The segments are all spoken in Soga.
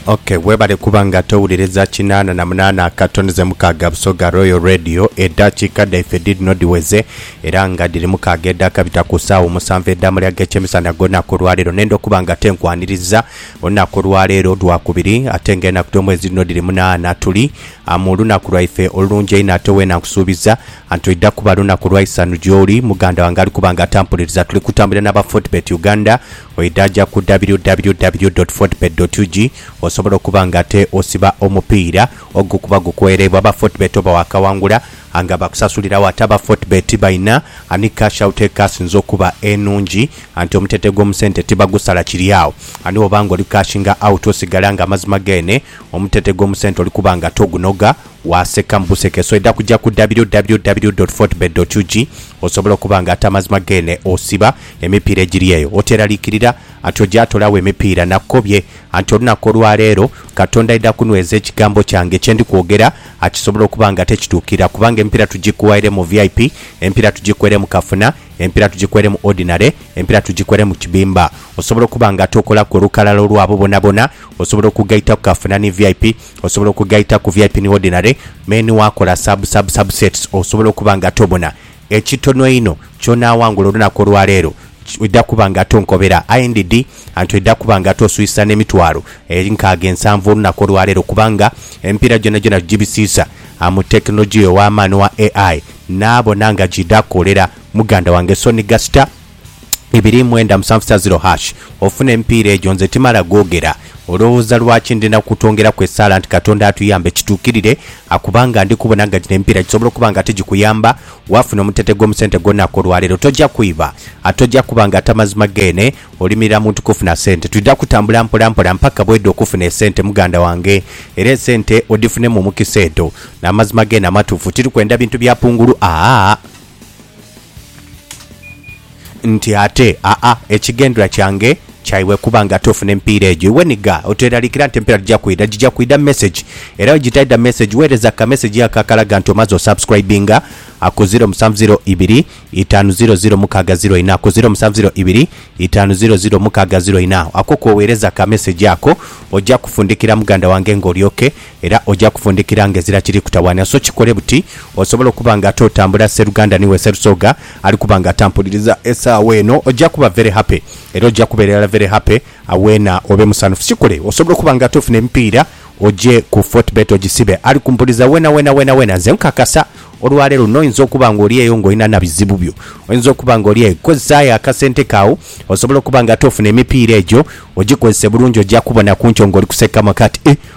ok webale kuba nga towuliriza kinaana na munaana akatoni ze mukaaga busoga royal radio edaakiika dhaife dhidhino dhiweze era nga dhiri mukaaga edhaakabita ku saawa omusanvu edhaamuli ag'ekyemisana ag'olunaku olwaleero nenda okuba nga te nkwaniriza olunaku olwaleero lwakubiri ate nga enaku dh'omwezi dhino dhiri munaana tuli ah, mu lunaku lwaife olulungi einho ate weena nkusuubiza anti oidha kuba lunaku lwa isanu gyoli muganda wange ali kuba nga atampuliriza tuli kutambulira n'aba fortbet uganda Oidha ja ku www.fortebet.ug osobola okuba nga ate osiba omupiira ogukuba gukweereibwa aba Fortebet oba waakawangula nga bakusasuliragho ate aba Fortebet baina ni Cash Out ekasinze okuba enungi anti omutete gw'omu sente tibagusala kiri agho ani woba nga oli cashinga out osigala nga amazima geene omutete gw'omu sente oli kuba nga togunoga Waaseka mu buseke so eda kuja ku www.fortebet.ug osobole okuba nga ate amazima geene osiba emipiira egiri eyo. Oteeraliikirira anti oja tola wo emipiira nakukobye anti olunaku olwa leero Katonda aidha kunweza ekigambo kyange kye ndi kwogera akisobole okuba nga tekituukirira kubanga emipiira tugikuwaire mu vip, emipiira tugikuere mu kafuna, emipiira tugikuere mu ordinary, emipiira tugikuere mu kibimba. Osobole okuba nga ate okolaku olukalala olwabo bonabona osobola okugaita ku kafuna ni vip. Osobola okugaita ku vip ni ordinary me ni wakola sub sub sub sets osobola okuba nga tobona. Ekitono einho kyonaawangula olunaku olwaleero ki oidha kuba nga tonkobera IND anti oidha kuba nga toswisa n'emitwalo eri nkaaga ensanvu olunaku olwaleero kubanga emipiira gyonagyona tugibisiisa mu tekinologiya ow'amaani owa ai naabona nga giidha koolera muganda wange Sonny Gasta ibiri mwenda musanvu sa ziro hash ofune emipiira egyo nze timala googera olowooza lwaki ndi na kutwongeraku esaala nti Katonda atuyambe kituukirire akuba nga ndi kubona nga gino emipiira gisobola okuba nga tigikuyamba waafuna omutete gw'omu sente gwo naku olwaleero tojja kwiba ate ojja kuba nga tamazima geene olimirira muntu kufuna sente twidha kutambula mpola mpola mpaka bwedha okufuna esente muganda wange era esente odifune mu mukisa edho namazima geene amatuufu tiri kwenda bintu bya pungulu aah Nti ate, aa, ekigendhwa kyange kya iwe kuba nga ate ofuna empiira egyo. Iwe ni gha, oteeraliikira nti empiira tija kwidha, gija kwidha mu message. Era bwe gitaidha mu message, weereza ka message ako akalaga nti omaze osubscribinga a ku ziro musanvu ziro ibiri itaanu ziro ziro mukaaga ziro ina, ku ziro musanvu ziro ibiri itaanu ziro ziro mukaaga ziro ina. Ako kwoweereza ka message ako, oja kufundikira muganda wange nga olyoke Era oja kufundikira nga ezira kiri kutawaanya. So kikole buti osobole okuba nga ate otambula sseruganda ni we Sserusoga ali kuba nga atampuliriza esaawa eno. Oja kuba very happy era oja kuba irala very happy awena obe musanhufu. Kikole osobole okuba nga ate ofuna emipiira oje ku Fortebet ogisibe. Ali kumpuliriza wena wena wena wena nze nkakasa olwa leero noinza okuba nga oli eyo nga olina na bizibu byo. Oinza okuba nga oli eyo. Kozesaayo akasente ko agho osobole okuba nga ate ofuna emipiira egyo ogikozese bulungi oja kubona ku nkyo nga oli kusekamu akati eh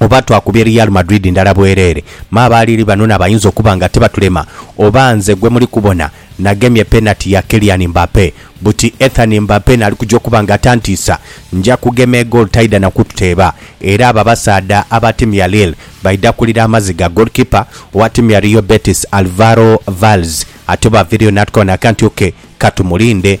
Oba twakubye Real Madrid ndala bwereere, me abaaliiri banona bayinza okuba nga tibatulema. Oba nze gwe muli kubona nagemye penati ya Kylian Mbappe, buti Ethan Mbappe naali kuja okuba nga tantiisa. Nja kugema egoolo taidha na kututeeba. Era abo abasaadha aba tiimu ya Lille baidha kulira amaziga. Goalkeeper owa tiimu ya Real Betis, Alvaro Valles, ati oba aveereyo n'atukoona akantu ke, ka tumulinde.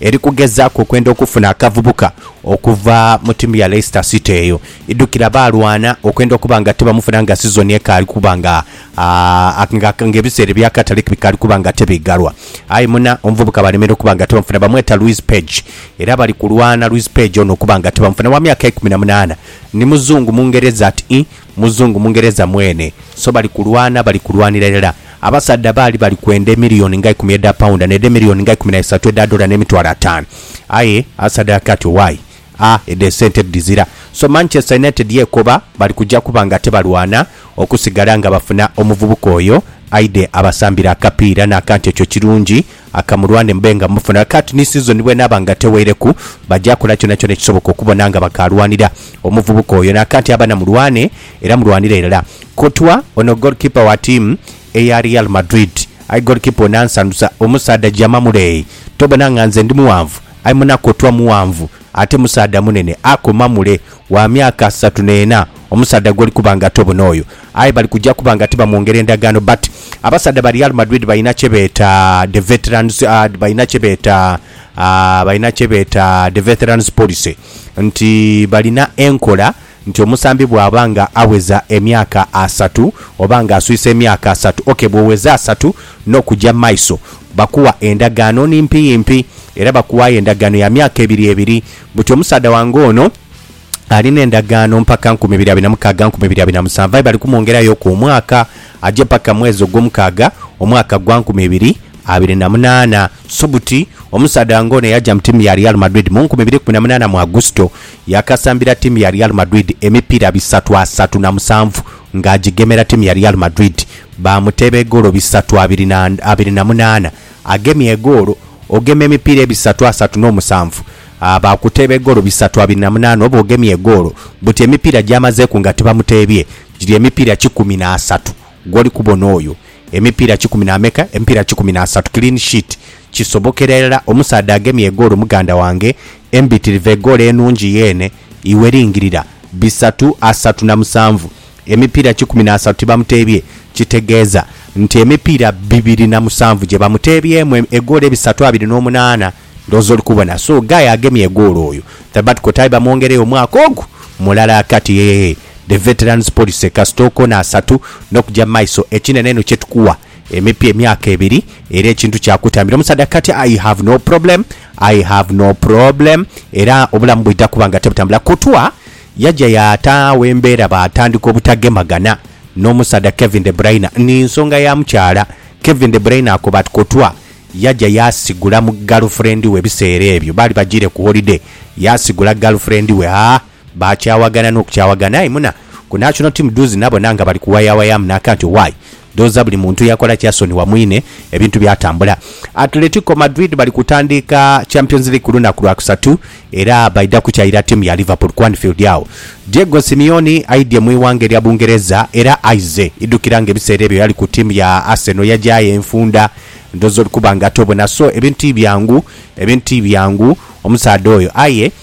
Eri kugezaaku okwenda okufuna akavubuka okuva mu tiimu ya Leicester City eyo, idhukira baalwana okwenda okuba nga tibamufuna nga sizoni ekaali kuba nga nga ebiseera eby'akatale bikaali kuba nga tibiigalwa. Aye muna omuvubuka baalemera okuba nga tibamufuna. Bamweta Luis Page era bali kulwana Luis Page ono okuba nga tibamufuna. Wa myaka ikumi na munaana, ni muzungu Mungereza ati. Muzungu, Mungereza mwene. So bali kulwana, bali kulwanira irala. Abasaadha baali bali kwenda emiliyoni nga ikumi edha paunda, n'edha emiliyoni nga ikumi na isatu edha dola n'emitwalo ataanu. Aye asadaakiire ati, Owaaye, a, edho esente tidhizira. So Manchester United yekoba bali kuja kuba nga tebalwana okusigala nga bafuna omuvubuka oyo aidhe abasambire akapiira n'akantu ekyo kirungi Akamulwane mbe nga mufuna. Kati ni sizoni bw'enaaba nga teweireku, baja kola kyonakyona ekisoboka okubona nga bakaalwanira omuvubuka oyo. Nakati abana mulwane era mulwanire irala. Courtois, ono goalkeeper wa tiimu eya Real Madrid. Aye goalkeeper ono ansanhusa. Omusaadha jama muleeyi. Tobona nga nze ndi mughanvu? Aye muna Courtois mughanvu ate musaadha munene. Akoma mule. wa myaka asatu n'ena, omusaadha gwoli kuba nga tobona oyo, aye bali kuja kuba nga tibamwongera endagaano but abasaadha ba Real Madrid balina kye beeta the veterans balina kye beeta balina kye beeta the veterans policy nti balina enkola nti omusambi bwaba nga aweza emyaka asatu oba nga aswise emyaka asatu ok bwoweza asatu n'okuja mumaiso bakuwa endagaano nimpi yimpi era bakuwayo endagaano ya myaka ebiri ebiri Buti omusaadha wange ono alina endagaano mpaka nkumi ibiri abiri na mukaaga nkumi ibiri abiri na musanvu aye bali kumwongerayoku omwaka aje paka mwezi ogwomukaaga omwaka gwa nkumi ibiri abiri na munaana so buti omusaadha wange ono eyaja mu tiimu ya Real Madrid mu nkumi ibiri kumi na munaana mu Agusito yakasambira tiimu ya Real Madrid emipiira bisatu asatu na musanvu nga agigemera tiimu ya Real Madrid baamuteeba egoolo bisatu abiri na abiri na munaana Agemye egoolo. Ogema emipiira ebisatu asatu n'omusanvu baakuteeba egoolo bisatu abiri na munaana oba ogemye egoolo. Buti emipiira gy'amazeeku nga tibamuteebye giri emipiira kikumi na asatu. Gw'oli kubona oyo emipiira kikumi na meka? Emipiira kikumi na asatu. Clean sheet. Kisobokera irala omusaadha agemye egoolo muganda wange embitirivu egoolo enungi yeene iwe lingirira. Bisatu asatu na musanvu. emipiira kikumi n'asatu tibamuteebye, kitegeeza nti emipiira bibiri na musanvu gye bamuteebyemu egoolo ebisatu abiri n'omunaana. Ndowooza oli kubona. So, guy agemye egoolo oyo, Thabbat Kotai bamwongereyo omwaka ogwo mulala kati. Yee, the veterans policy. Kasita okoona asatu n'okugya mu maiso, ekinene inho kye tukuwa emipya emyaka ebiri era ekintu kyakutambira. Omusaadha kati, I have no problem, I have no problem, era obulamu bwidha kuba nga tebutambula kutwa. Yaja yaata agho embeera baatandika obutagemagana n'omusaadha Kevin De Bruyne ni nsonga ya mukyala. Kevin De Bruyne akoba ati, Courtois yaja yaasigula mu galufrendi we ebiseera ebyo baali bajiire ku holiday. Yaasigula galufrendi we. Haa, baakyawagana n'okukyawagana. Aye muna ku national team doozi nabona nga bali kuwayawayamu nakanti, Why? Ndhowooza buli muntu yakola kyasonyiwa mwine ebintu byatambula. Atletico Madrid bali kutandiika Champions League ku lunaku Lwakusatu era baidha kukyaira ttiimu ya Liverpool ku Anfield agho. Diego Simeone aidhye mu ighanga erya Bungereza era aizze idhukira nga ebiseera ebyo yali ku ttiimu ya Arsenal yagyagho enfunda. Ndhowooza oli kuba nga tobona so ebintu ti byangu, ebintu ti byangu omusaadha oyo aye.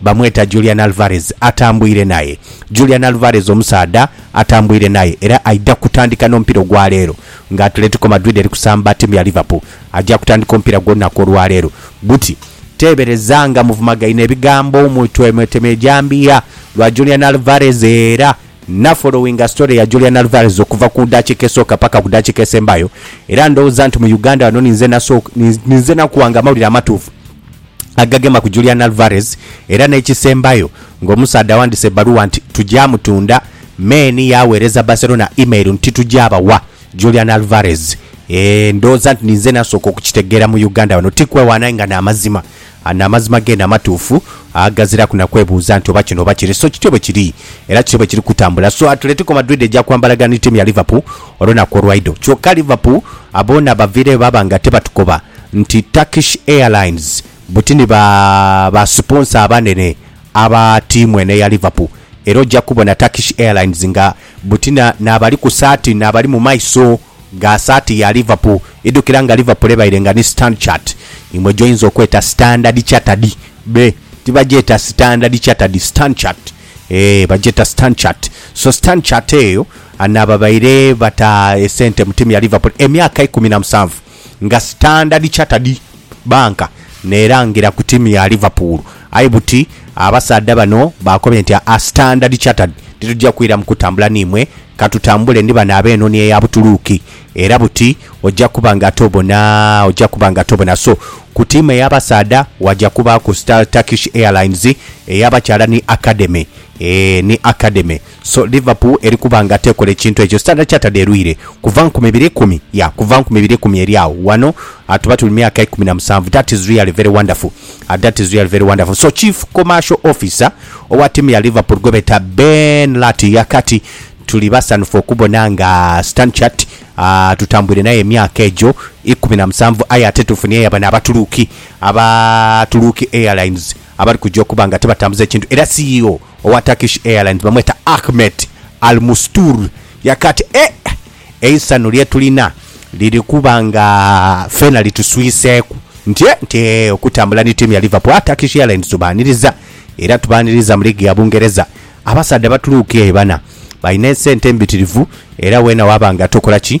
Bamweta Julian Alvarez atambwire naye Julian Alvarez omusaadha atambwire naye era aidha kutandika n'omupiira ogwaleero nga Atletico Madrid eri kusamba ttiimu ya Liverpool. Aja kutandika omupiira gwe olunaku olwaleero buti. Teebereza nga muvumagaine ebigambo mu Twemweteme Ejambiya lwa Julian Alvarez era na followinga story ya Julian Alvarez okuva ku dakiika esooka paka ku dakiika esembayo era ndhowooza nti mu Uganda wano ninze ninze nakuwa nga amawulire amatuufu. agagema ku Julian Alvarez era n'ekisembayo ng'omusaadha awandiise ebbaluwa nti tugya mutunda, Maine yaaweereza Barcelona email nti tugya bawa Julian Alvarez. Eeh ndhooza nti ninze nasooka okukitegeera mu Uganda wano, ti kwewaana aye nga n'amazima. Ano amazima geene amatuufu aghaziraku na kwebuuza nti oba kino oba kire. So kityo bwe kiri era kityo bwe kiri kutambula. So Atletico Madrid egya kwambalagana ni tiimu ya Liverpool olunaku olwaidho. Kyoka Liverpool boona baviireyo baaba nga tebatukoba. nti Turkish Airlines buti ni ba ba siponsa abanene aba tiimu eno eya Liverpool era oja kubona Turkish Airlines nga buti na n'abali ku saati n'abali mu maiso ga saati ya Liverpool. Idhukira nga Liverpool ebaire nga ni Standchart imwe gy'oyinza okweta Standard Chartered, be tibagyeta Standard Chartered, Standchart, eeh bagyeta Standchart. So Standchart eyo n'ababaire bata esente mu tiimu ya Liverpool emyaka ikumi na musanvu. nga Standard Chartered Bank n'erangira ku tiimu ya Liverpool aye buti abasaadha bano baakobye nti, Aa Standard Chartered titugya kwiramu kutambula n'imwe, ka tutambule ni bano ab'enhonhi eya Butuluuki era buti ogya kuba nga tobona ogya kuba nga tobona so ku tiimu ey'abasaadha waja kubaaku Star Turkish Airlines ey'abakyala ni Academy, eeh ni Academy. So Liverpool eri kuba nga tekola ekintu ekyo Standard Chartered erwire kuva nkumi ibiri ikumi, yeah, kuva nkumi ibiri ikumi eri agho ghano tuba tuli myaka ikumi na musanvu. That is really very wonderful, that is really very wonderful. So Chief Commercial Officer owa tiimu ya Liverpool gwebeeta Ben Lartey yaaka ati, Tuli basanhufu okubona nga Stanchart tutambwire naye emyaka egyo ikumi na musanvu aye ate tufunyeeyo bano Abatuluki aba Tuluki Airlines, abali kuja okuba nga tibatambuza ekintu era CEO owa Turkish Airlines bamweta Ahmet Almustur yaka ati, E, eisanhu lye tulina liri kuba nga feena lituswiseeku nti e, nti e, okutambula ni tiimu ya Liverpool. A Turkish Airlines tubaaniriza era tubaaniriza mu liigi ya Bungereza. Abasaadha batuluuka e Bana, balina esente mbitirivu era weena waaba nga tokola ki,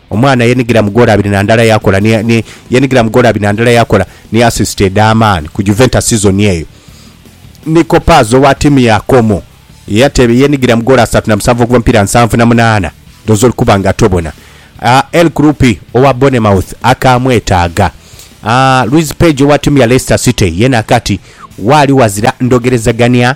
Omwana yenigira mu goolo abiri na ndala yakola ni ni yenigira mu goolo abiri na ndala yakola ni asisiti edh'amaani ku Juventus sizoni eyo. Nico Paz owa ttiimu ya Como yateebe yenigira mu goolo asatu na musanvu okuva mu mipiira nsanvu na munaana dh'oze ori kuba nga tobona. El Kroupi owa Bournemouth akaamwetaaga. Luiz Page owa ttiimu ya Leicester City yena akati, Waali wazira ndhogerezagania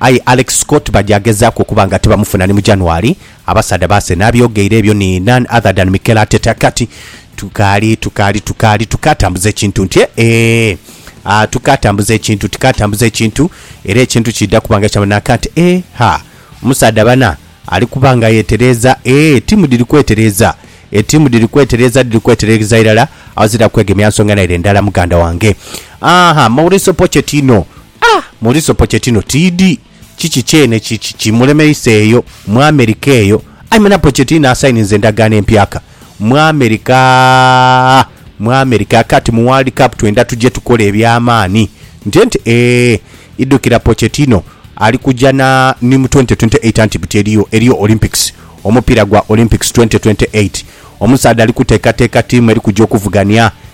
Aye Alex Scott baja agezaaku okuba nga tibamufuna ni mu January, abasaadha ba Arsenal abyogeire ebyo ni none other than Mikel Arteta kati, Tukaali, tukaali, tukaali, tukaatambuza ekintu nti, eehh, aah, tukaatambuza ekintu, tukaatambuza ekintu, era ekintu kiidha kuba nga kya manha ka nti, eeh, ha, omusaadha bana ali kuba nga yetereeza, eeh, ettiimu dhiri kwetereeza, ettiimu dhiri kwetereeza, dhiri kwetereeza irala, aghazira kwegemya nsonga naire ndala, muganda wange. Aah, Mauricio Pochettino, A! Mulisopo Chetino tiidi kiki kyene ki ki mulemeisa eyo mu Amerika eyo? Aye muna Pochettino asayininze endagaano empyaka mu Amerika aa! Mu Amerika aa! Kati mu World Cup twenda tuje tukole eby'amaani. Nte nti, Ee! Idhukira Pochettino ali kuja na ni mu twenty twenty eight anti buti eriyo, eriyo Olympics, omupiira gwa Olympics twenty twenty eight. Omusaadha ali kuteekateeka tiimu eri kuja okuvugania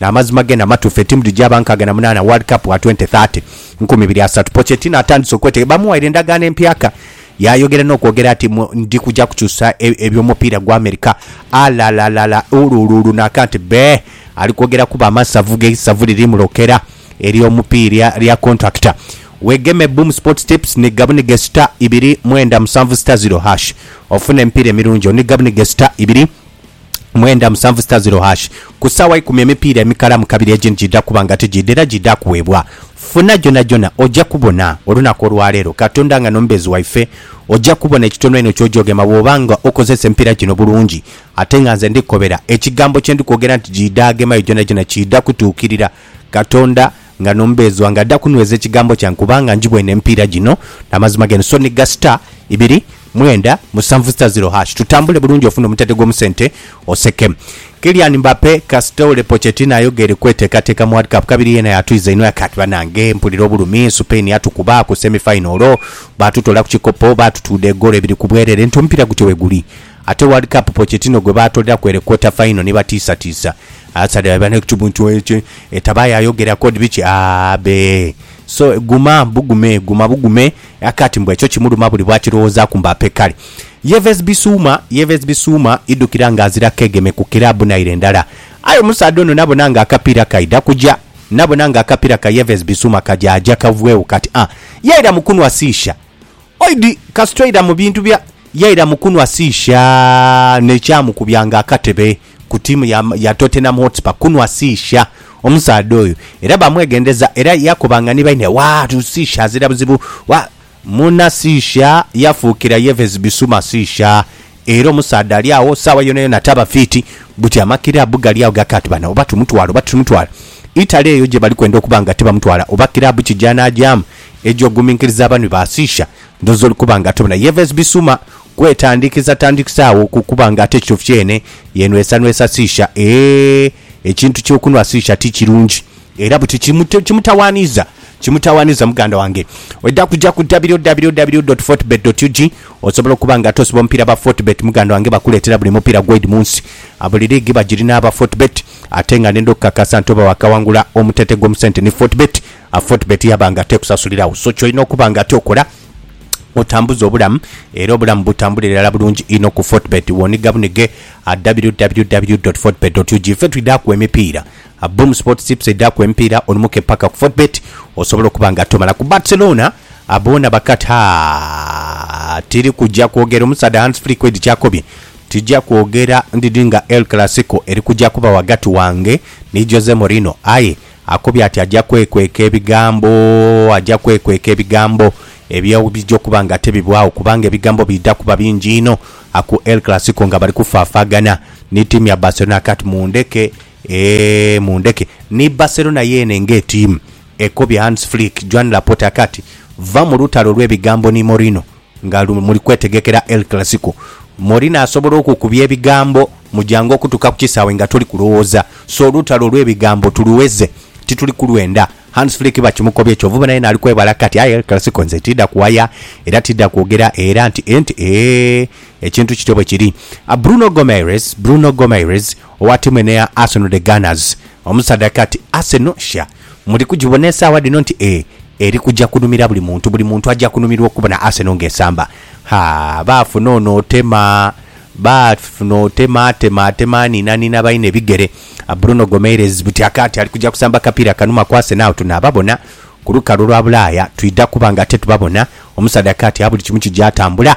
N'amazima gene amatuufu, etiimu dhijaaba nkaaga na munaana World Cup wa twenty thirty, nkumi ibiri asatu. Pochettino atandise okwetege, bamuwaire endagaano empyaka, yaayogera n'okwogera ati, Ndi kuja kukyusa eby'omupiira gwa Amerika. Alalalala! Uluuluulu! N'akanti bee! Ali kwogera kuba amasavu ge isavu liri mulokera ery'omupiira lya kontulakita. Weegeme Boom Sports Tips ni gabunige sita ibiri mwenda musanvu sita ziro hash ofune emipiira emirungi. Oniigabunige sita ibiri. mwenda musanvu sita ziro hash Ku saawa ikumi emipiira emikalamu kabiri egindi giidha kuba nga tigiidha era giidha kuweebwa. Funa gyonhagyonha oja kubona olunaku olwaleero Katonda nga n'omubeezi waife. Oja kubona ekitono einho ky'ojoogema bw'oba nga okozesa emipiira gino bulungi. Ate nga nze ndikukobera, ekigambo kye ndikwogera nti giidha agemayo gyonhagyonha kiidha kutuukirira. Katonda. nga n'omubeezi wange adha kunweza ekigambo kyange, kubanga ngibwene emipiira gino n'amazima g'eno, so ni gha star ibiri mwenda musanvu star zero hash. Tutambule bulungi ofune omutate gw'omu sente oseke. Kylian Mbappe kasita ole Pochettino ayogeire kweteekateeka mu World Cup kabiri yeena yatwiza inho yaka ati banange mpulira obulumi, Supain yatukuba ku semi fayinolo, baatutola ku kikopo, baatutuudha egoolo ibiri ku bwerere nti omupiira gutyo bweguli. Ate World Cup Pochettino gwe baatoleraku ere quarter fayino ni batiisatiisa. Asali aba ne kibu nti eki etabayo ayogera kod biki aah bee so guma bugume guma bugume akati mbu ekyo kimuluma buli bwakilowozaku mbu ape kale Yves Bisuma Yves Bisuma idukira nga azira kegeme ku club naire ndala aye omusaadha ono nabona nga akapira kaida kuja nabona nga akapira ka Yves Bisuma kaja aja kavwegho kati aah yaira mu kunwa sisha oid kasita oira mu bintu bya yaira mu kunwa sisha ne kyamukubya nga akatebe. ku ttiimu ya ya Tottenham Hotspur kunhwa siisha. Omusaadha oyo era baamwegendeza era yakobanga ni baine, Waa, siisha azira buzibu. Waa, muna siisha yafuukira Yves Bissouma siisha. Era omusaadha ali agho saawa yonayona taba fiiti. Buti amakiraabu gali agho gakati bano oba tumutwale oba titumutwala. Italy eyo gye bali kwenda okuba nga tibamutwala oba kiraabu ki gy'anaagyamu egy'oguminkiriza abanhwi ba siisha, ndhooza oli kuba nga tobona. Yves Bissouma Kwetandikisatandikisagho ku kuba nga ate kyo kyeene yenhwesanhwesa siisha. Ee, ekintu ky'okunhwa siisha ti kirungi. Era buti kimutawaaniza. Kimutawaaniza. Muganda wange, oidha kuja ku www dot fortebet dot ug osobola okuba nga ate osiba omupiira ba Fortebet. Muganda wange, bakuleetera buli mupiira gwoid mu nsi. Buli liigi bagirina aba Fortebet. Ate nga n'enda okukakasa nti oba waakawangula omutente gw'omu sente ni Fortebet, Fortebet yaba nga ate ekusasuliragho. So ky'olina okuba nga ate okola. otambuze obulamu era obulamu butambule irala bulungi inho ku Fortebet woniga bunige www.fortebet.ug ife twidhaku emipiira Boom Sports Tips eidhaku emipiira olumuke paka ku Fortebet osobole okuba nga tomala ku Barcelona boona bakat haa tiri kuja kwogera omusaadha Hans Flick Edi kyakobye tija kwogera ndidi nga El Clasico eri kuja kuba wagati wange ni Jose Mourinho aye Akobye ati aja kwekweka ebigambo aja kwekweka ebigambo ebyo bwebija okuba nga tebibwagho kubanga ebigambo bidha kuba bingi inho aku El Clasico nga bali kufafaagana ni ttiimu ya Barcelona aka ati mundheke eeh mundheke. Ni Barcelona yeene ng'etiimu ekobye Hans Flick, Joan Laporte aka ati, Va mu lutalo lw'ebigambo ni Mourinho Nga muli kwetegekera El Clasico, Molina asobola okukubya ebigambo mu jangu okutuuka ku kisaawe nga toli kulowooza. So olutalo olw'ebigambo tuluweze, tituli kulwenda. Hans Flick bakimukobye, kyovubona yena ali kwebala kati, Aye El Clasico nze tiidha kuwaya era tiidha kwogera era nti e nti eeh. Ekintu kityo bwe kiri. Bruno Gomaires, Bruno Gomaires, owa tiimu eno eya Arsenal The Gunners, omusaadha kati Arsenal, sha! Muli kugibona esaawa dhino nti e, eri kuja kunhumira buli muntu. Buli muntu aja kunhumirwa okubona Arsenal nga esamba. Ha, baafuna ono otema, baafuna otema, atema, atema, aniinaniina baine ebigere. Bruno Gomeirez buti akaati ali kuja kusamba kapiira kanuma ku Arsenal. Tunaababona ku lukalu lwa Bulaaya, twidha kuba nga ate tubabona. Omusaadha kaati a buli kimu kija tambula.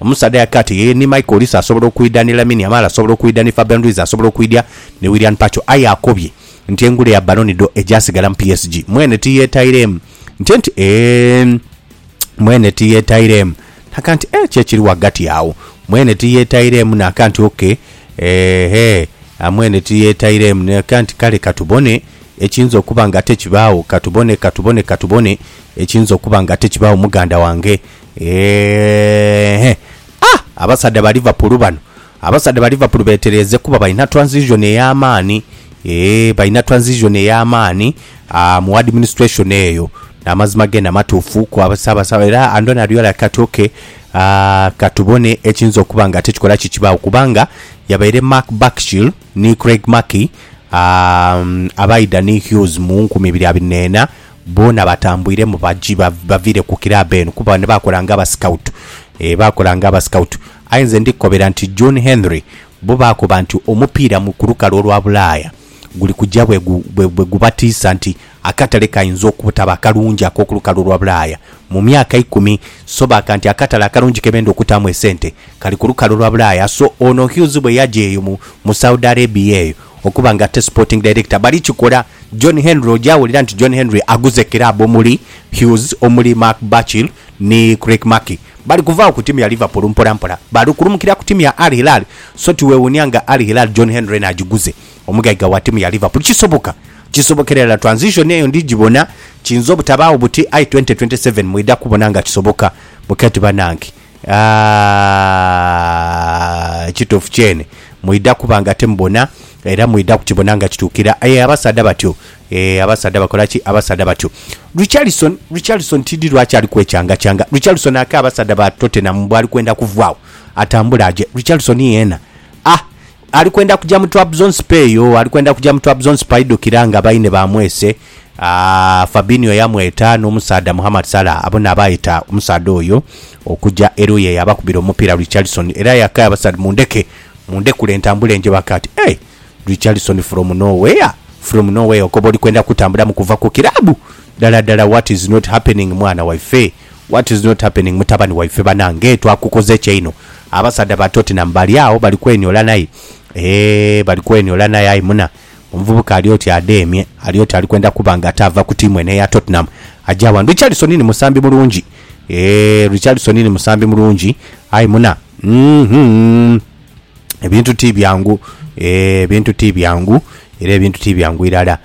Omusaadha yake ati yeye ni Michael Olise asobola okwidha ni Lamine Yamal asobola okwidha ni Fabian Ruiz asobola okwidha ni Willian Pacho aye akobye nti engule ya Ballon d'Or egyasigala mu PSG mwene tiyetaireemu nti nti eeh mwene tiyetaireemu naka nti eeh ki ekiri ghagati agho mwene tiyetaireemu naka nti ok eeh eeh mwene tiyetaireemu naka nti kale katubone ekiyinza okuba nga ate kibaagho katubone katubone katubone ekiyinza okuba nga ate kibaagho muganda wange Eehh ah abasadha ba Liverpool bano abasadha ba Liverpool betereeze kuba balina transition ey'amaani eeh balina transition ey'amaani ah mu administration eyo n'amazima gena matuufu ku Ssaabasaba era Andoni Ariola kati ok ah katubone ekiyinza okuba nga ate kikola ki kibaawo kubanga yabaire Mark Burchill ni Craig Mackey ah abaidha ni Hughes mu nkumi ibiri abiri n'ena Boona batambwiremu baji bavire ku club eno kuba bano bakola nga aba scout eeh bakola nga aba scout aye nze ndi kukobera nti John Henry bo bakoba nti omupiira mu ku lukalu olwa bulaaya guli kuja bwe gubatiisa nti akatale kainza obutaba akalungi akoku lukalu olwa bulaaya mu myaka ikumi so baaka nti akatale akalungi ke benda okutaamu esente kali ku lukalu olwa bulaaya so ono Hughes bwe yaja eyo mu Saudi Arabia eyo Okuba nga ate Sporting Director bali kikola, John Henry oja wulira nti John Henry aguze club omuli Hughes, omuli Mark Burchill ni Craig Mackey. Bali kuvaagho ku tiimu ya Liverpool mpola mpola bali kulumukira ku tiimu ya Al Hilal so tiwewuunia nga Al Hilal John Henry eno agiguze omugaiga wa tiimu ya Liverpool. Kisoboka, kisobokera irala transition eyo ndi gibona. Kiyinza obutabaagho buti aye twenty twenty seven mwidha kubona nga kisoboka. Mukati banange. Aaa, ekituufu kyene mwidha kuba nga timubona era mwidha kukibona nga kituukira. Aye abasaadha batyo, ee, abasaadha bakola ki? Abasaadha batyo. Richarlison, Richarlison tidhi lwaki ali kwekyangachanga. Richarlison ake abasaadha ba Tottenham bwali kwenda kuvaagho atambule aje. Richarlison yeena, ah, Ali kwenda kuja mu Trabzonspor eyo, ali kwenda kuja mu Trabzonspor aidhukira nga baine baamwese, Fabinho yamweta n'omusaadha Mohamed Salah abo n'abaayeta omusaadha oyo okuja era oyo y'eyabakubira omupiira Richarlison era yaakayaba ati Salah mundheke, mundhekule ntambule nje baka ati Hey! Richarlison from nowhere? From nowhere okoba oli kwenda kutambulamu kuva ku kiraabu? Ddala ddala what is not happening mwana waife? What is not happening mutabani waife banange twakukoze ki einho abasaadha ba Tottenham bali agho bali kweniola naye eeh bali kweniola naye aye muna omuvubuka ali oti adheemye ali oti ali kwenda kuba nga ate ava ku tiimu eno eya Tottenham aja wano Richarlison ni musambi mulungi eeh Richarlison ni musambi mulungi aye muna uhmm ebintu ti byangu eeh ebintu ti byangu era ebintu ti byangu irala.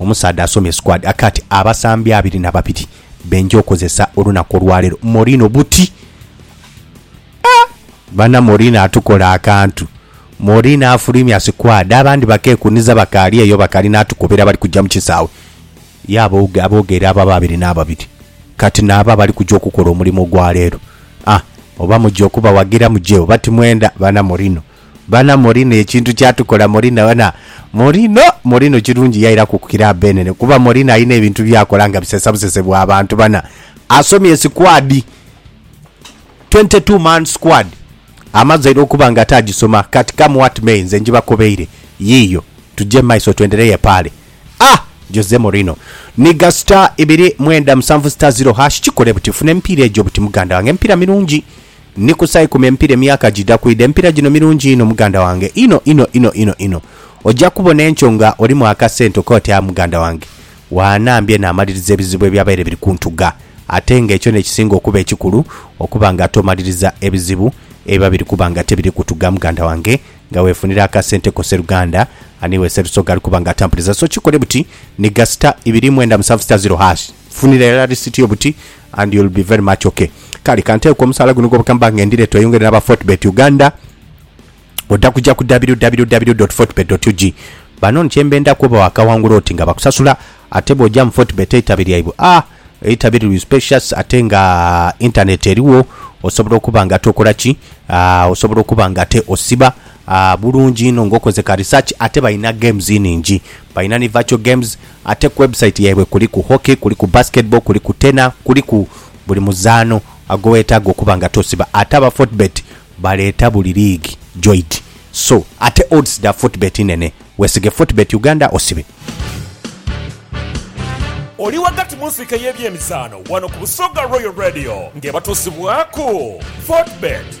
Omusaadha asomye squad aka ati abasambi abiri na babiri benja okozesa olunaku olwalero Mourinho buti ah bana Mourinho atukola akantu Mourinho afulumya squad abandi bakekuniza bakali eyo bakali natukobera abali kuja mukisawe ye abogeera abo ababiri nababiri kati nabo abali kuja okukola omulimu ogwalero ah oba muja okubawagira muje oba timwenda bana Mourinho Bana morino ekintu kyatukola morino bana morino morino kirungi yairaku ku kiraabu enene kuba morino alina ebintu byakola nga bisesa busese bwa bantu bana asomye sikwadi 22 man squad amaze era okuba nga ate agisoma kati come what may nze ngibakobeire yiiyo tuje mumaiso twendereye pale ah Jose morino niga star ibiri mwenda musanvu star zero hash kikole buti funa emipiira egyo buti muganda wange emipiira mirungi. Ni ku saa ikumi empira emyaka gidha kwidha. Empira gino mirungi inho muganda wange, inho inho inho inho inho. Oja kubona enkyo nga olimu akasente okobe oti aah muganda wange waanambye naamaliriza ebizibu ebyabaire biri kuntuga. Ate nga ekyo n'ekisinga okuba ekikulu okuba nga tomaliriza ebizibu ebiba biri kuba nga tebiri kutuga muganda wange nga weefunira akasente ko seruganda aniiwe Sserusoga ali kuba nga atambuliza. So kikole buti, ni ga sita ibiri mwenda musanvu sita ziro hash. Funira irala receipt yo buti and you'll be very much ok. Kale kanteeke ku omusaala guno gwobaka mubanga ngendire tweyongere naba Fortebet Uganda oda kuja ku www.fortebet.ug Banono kyembenda kuba wakawangula oti nga bakusasula ate bwoja mu Fortebet eitabi lyaibwe aah eitabi liri spacious ate nga internet eriwo osobola okuba nga ate okola ki aah osobola okuba nga ate osiba aah bulungi inho nga okoze ka research ate balina games iningi balina ni virtual games Ate ku website yaibwe kuliku hockey, kuliku basketball, kuliku tenor, kuliku buli muzaano agowetaaga okuba nga tosiba. Ate aba Fortebet baleeta buli liigi joidi so ate odds dha Fortebet nnene. Wesige Fortebet Uganda osibe. Oli ghagati mu nsiike y'ebyemizaano wano ku Busoga Royal Radio ng'ebatuusibwaku Fortebet.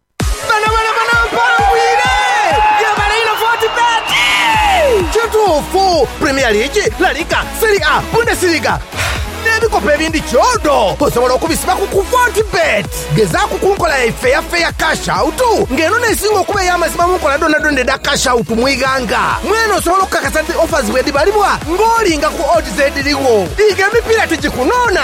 Kituufu, Premier League, La Liga, Serie A, Bundesliga, n'ebikopo ebindi kyodo osobola okubisiba ku ku Fortebet. Gezaaku ku nkola yaife eya Fair Cash Out nga eno n'esinga okuba ey'amazima mu nkola dhoonadhoona edha Cash Out mu ighanga. Mwene osobola okukakasa nti offers bwedhibalibwa ng'olinga ku odds edhirigho. Liiga emipiira tigikunoona.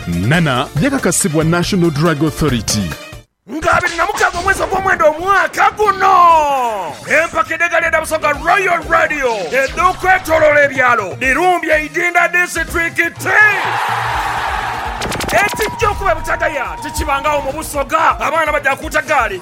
Nana yakakasibwa National Drug Authority. Nga abiri na mukaaga omwezi ogw'omwenda omwaka guno, empaka edh'egaali edha Busoga Royal Radio edh'okwetoloola ebyalo dhirumbye Idinda disiturikiti. Ekijja okuba ebutagaya tikibangagho mu Busoga, abaana baja kuuta gaali.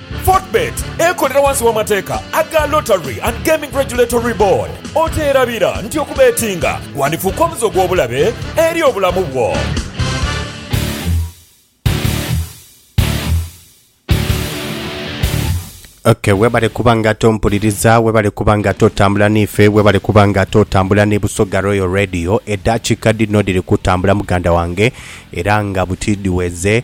Fortebet ekolera wansi w'amateeka aga Lottery and Gaming Regulatory Board. Okyerabira nti okubetinga gwandifuuka omuze ogw'obulabe eri obulamu bwo? Okay, webale kuba nga ate ompuliriza, webale kuba nga ate otambula niife, webale kuba nga ate otambula ni Busoga Royal Radio. Eddakiika dhino dhiri kutambula muganda wange, era nga buti dhiweze.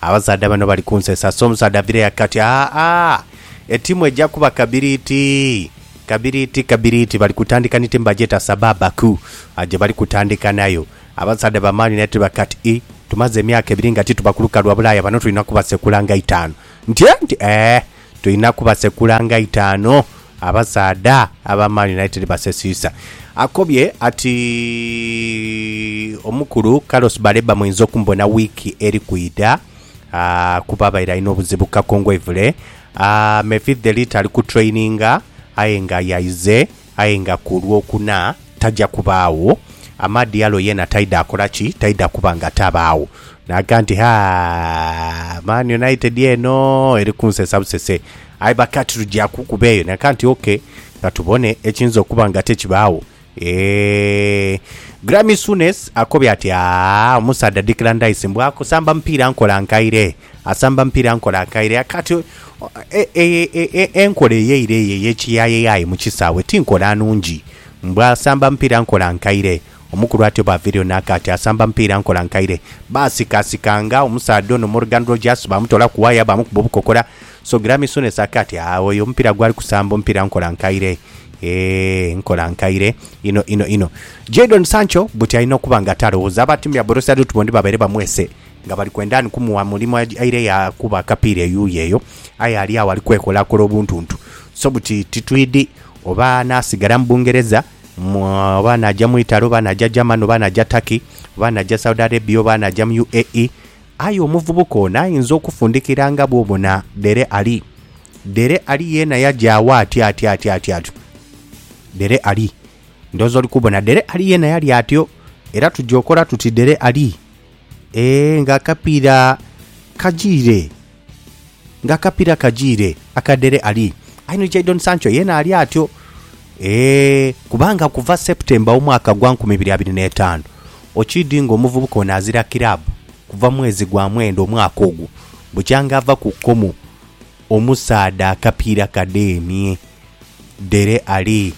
Abasaadha bano bali kunsesa so omusaadha avire yake ati, Aa-a! Etimu eja kuba kabiriiti! Kabiriiti, kabiriiti! Bali kutandika ni timu bagyeta Sababaku gye bali kutandika nayo. Abasaadha ba Man United bali kati, Ii, tumaze emyaka ebiri nga tituba ku lukalu lwa Bulaaya, bano tulina kubasekula nga itaanu. Nti, Ee! Nti, Ee! Tulina kubasekula nga itaanu abasaadha aba Man United basesiisa. Akobye ati omukulu Carlos Baleba muinza okumubona wiiki eri kwidha kuba abaire alina obuzibu ku kakongoivule. Mephi Thelite ali ku traininga aye nga yaize Aye nga ku lwokuna taja kubaagho, Amadialo yeena taidha kola ki? Taidha kuba nga tabaagho. Naaga nti, Ha, Man United eno eri kunsesa busese. Aye baka tija kukuba eyo. Naaga nti, OK, ka tubone ekiyinza okuba nga tekibaagho. Eeh. Graeme Souness akobye ati, Aa, omusaadha Declan Rice mbu akusamba mupiira nkola nkaire. Asamba mpira nkola akaire akati enkola eyeire eyo eyekiyayeyaye mu kisaawe ti nkola nungi. Mbwa asamba mpira nkola nkaire. Omukulu atyo bw'aviireyo n'aka ati, Asamba mpira nkola nkaire. Baasikasikanga omusaadha ono Morgan Rogers baamutoola ku waaya baamukuba obukokola. So Grammy Souness aka ati, Aagh oyo omupira gwali kusamba omupira nkola nkaire. Eeh nkola nkaire inho inho inho. Jadon Sancho buti alina okuba nga talowooza abatimya Borussia Dortmund babaire bamwese Nga bali kwenda ni kumugha mulimo aire ya kuba akapiira eyuuyo eyo, aye ali agho ali kwekolakola obuntuntu, so buti titwidhi oba anaasigala mu Bungereza, oba anaaja mu Italy, oba anaaja Germany, oba anaaja Turkey, oba anaaja Saudi Arabia, oba anaaja mu UAE. Aye omuvubuka ono ayinza okufundikira nga bw'obona Dele Alli. Dele Alli yeena yaja agho atyo atyo atyo atyo atyo. Dele Alli. Ndowooza oli kubona. Dele Alli yeena yali atyo. Era tuja okola tuti Dele Alli. Ee, nga akapiira kajiire, nga akapiira kajiire aka Dele Alli. Aye ni Jadon Sancho yeena ali atyo. Ee, kubanga okuva September w'omwaka gwa nkumi ibiri abiri n'etaanu, okiidhi ng'omuvubuka ono azira kiraabu kuva mwezi gwa mwenda omwaka ogwo bukyanga ava ku kkomo omusaadha akapiira kadeemye. Dele Alli,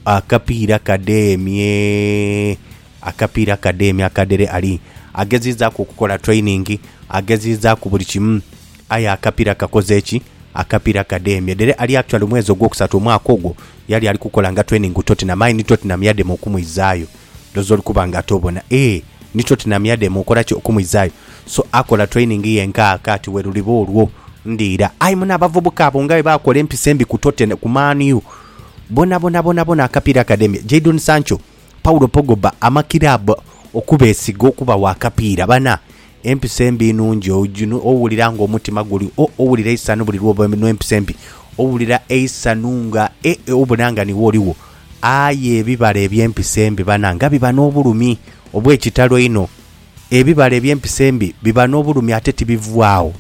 akapiira kadeemye. Akapiira Akadheemi Akadhere Ali ageziizaaku okukola training, ageziizaaku buli kimu. Aye akapiira kakoze ki? Akapiira Akadheemi Edhere Ali actually mwezi ogwokusatu omwaka ogwo yali ali kukola nga training ku Tottenham aye ni Tottenham yadema okumwizaayo. Ndhooza oli kuba nga ate obona. Eeh ni Tottenham yadema okola ki? Okumwizaayo. So akola training ye nkaaka ati we luliba olwo ndiira. Aye mune abavubuka abo nga bwe baakola empisa embi ku Totten, ku Man U. Bonabona, bonabona akapiira akadheemi. Jadon Sancho. Paulo Pogba ama kiraabu okubeesiga okubawa akapiira. Bana, empisa embi nungi. Owulira ng'omutima guli o, owulira eisanhu buli lw'oba n'empisa embi. Owulira eisanhu nga e, obona nga niwe oligho. Aye ebibala eby'empisa embi, bana, nga biba n'obulumi obw'ekitalo einho! Ebibala eby'empisa embi biba n'obulumi ate tibivwaagho.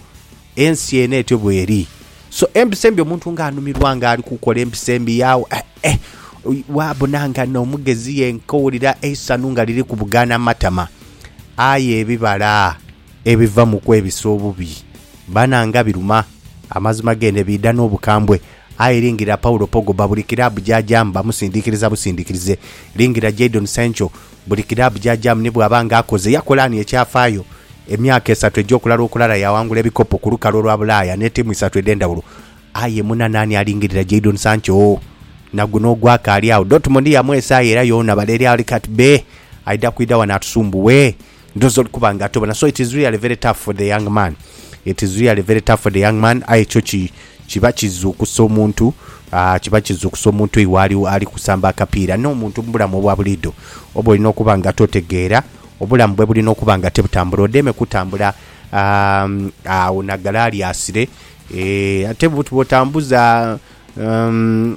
Ensi eno etyo bweri. So empisa embi omuntu nga anumirwa nga ali kukola empisa embi yagho eh eh wabona nga no mugezi yenka owulira eisanhu nga liri kubugana matama. Aye ebibala ebiva mu kwebisa obubi bananga biruma. Amazima gende biidha nobukambwe aye lingira Paulo Pogba buli club gyajaamu bamusindikiriza busindikirize. Lingira Jadon Sancho Buli kiraabu gy'ajamu ni bw'aba nga akoze yakola ni ekyafaayo. Emyaka esatu egy'okulala okulala yaghangula ebikopo ku lukalu olwa Bulaaya ne tiimu isatu edh'endhawulo. Aye muna naani alingirira Jadon Sancho? Na guno ogwakaali agho, Dortmund yamwesaayo era yoona baleere ali kati bee, aidha kwidha ghano atusumbuwe? Ndhoza oli kuba nga atobona. So it is really very tough for the young man. It is really very tough for the young man. Aye kyo ki, kiba kizuukusa omuntu, aah, kiba kizuukusa omuntu eyo waali ali kusamba akapiira. N'omuntu mu bulamu obwa buliidho oba olina okuba nga totegeera, obulamu bwe bulina okuba nga tibutambula. Odheeme kutambula, aah, agho na galaaliasire, eeh, ate bwotambuza, umm.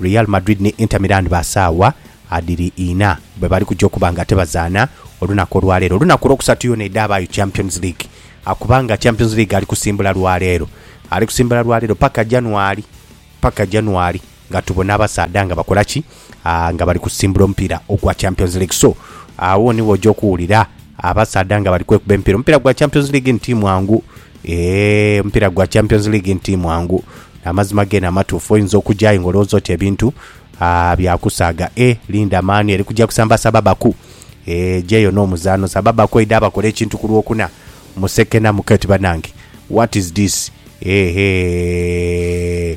Real Madrid ni Inter Milan ba saawa adhiri ina bwe bali kuja okuba nga tebazaana olunaku olwaleero. Olunaku olwokusatu yoona edhaabaayo Champions League kubanga Champions League ali kusimbula lwaleero. Ali kusimbula lwaleero paka January, paka January nga tubona abasaadha nga bakola ki? Nga bali kusimbula omupiira ogwa Champions League. So, agho niwo oja okuwulira abasaadha nga bali kwekuba emipiira. Omupiira gwa Champions League ni ti mwangu. Eeh omupiira gwa Champions League nti mwangu. Amazima gene amatuufu. Oyinza okuja aye nga olowooza oti ebintu aah bya kusaaga eeh linda Man U eri kuja kusamba Sababaku eeh ejeyo n'omuzaano. Sababaku eidha bakola ekintu ku Lwokuna musekenamuke oti banange what is this eeh eeh.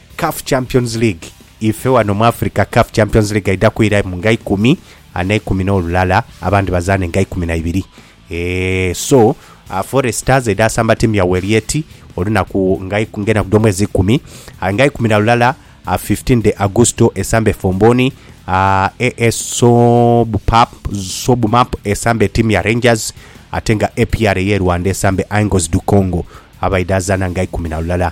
Caf Champions League, Ife wano mu Africa Caf Champions League eidha kwira mu nga ikumi n'eikumi n'olulala, abandi bazaane nga ikumi na ibiri. Eeh so Foreign Stars eidha asamba tiimu ya Welieti olunaku nga iku- ng'enaku dh'omwezi ikumi ah, nga ikumi na lulala ah, 15 de Augusto esambe Fomboni ah, AS Sobupap Sobumap esambe tiimu ya Rangers ate nga APR ey'e Rwanda esambe Angles du Congo abaidha zaana nga ikumi na lulala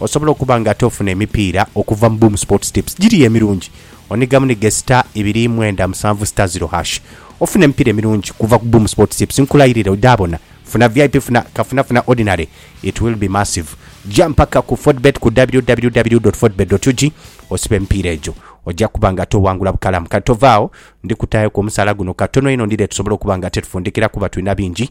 Osobola okuba nga ate ofuna emipiira okuva mu Boom Sports Tips. Giriyo emirungi. Onigamu ni ghe star ibiri mwenda musanvu star ziro hash. Ofune emipiira emirungi kuva ku Boom Sports Tips. Nkulayirire odhabona. Funa vip funa kafuna funa ordinary it will be massive. Gya mpaka ku Fodbet ku www dot fodbet dot ug osibe emipiira egyo. Oja kuba nga ate owangula bukalamu. Kati tova agho, ndi kutaayoku omusaala guno katono inho ndidhe tusobole okuba nga ate tufundikira kuba tulina bingi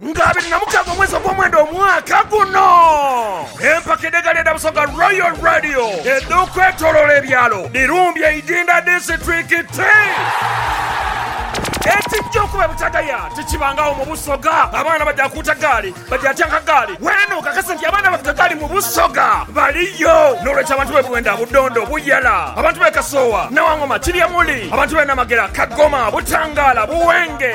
Nga abiri na mukaaga omwezi ogw'omwenda omwaka guno, empaka edh'egaali edha Busoga Royal Radio edh'okwetoloola ebyalo dhirumbye Idinda disiturikiti. Ekijja okuba ebutagaya tikibangagho mu Busoga. Abaana baja kuuta gaali, baja tyanka gaali. Weene okakase nti abaana abavuga gaali mu Busoga baliyo. N'olwekyo abantu b'e Bwenda, Budondo, Buyala, abantu b'e Kasoowa, Nawangoma, Kiryamuli, abantu b'e Namagera, Kagoma, Butangaala, Buwenge,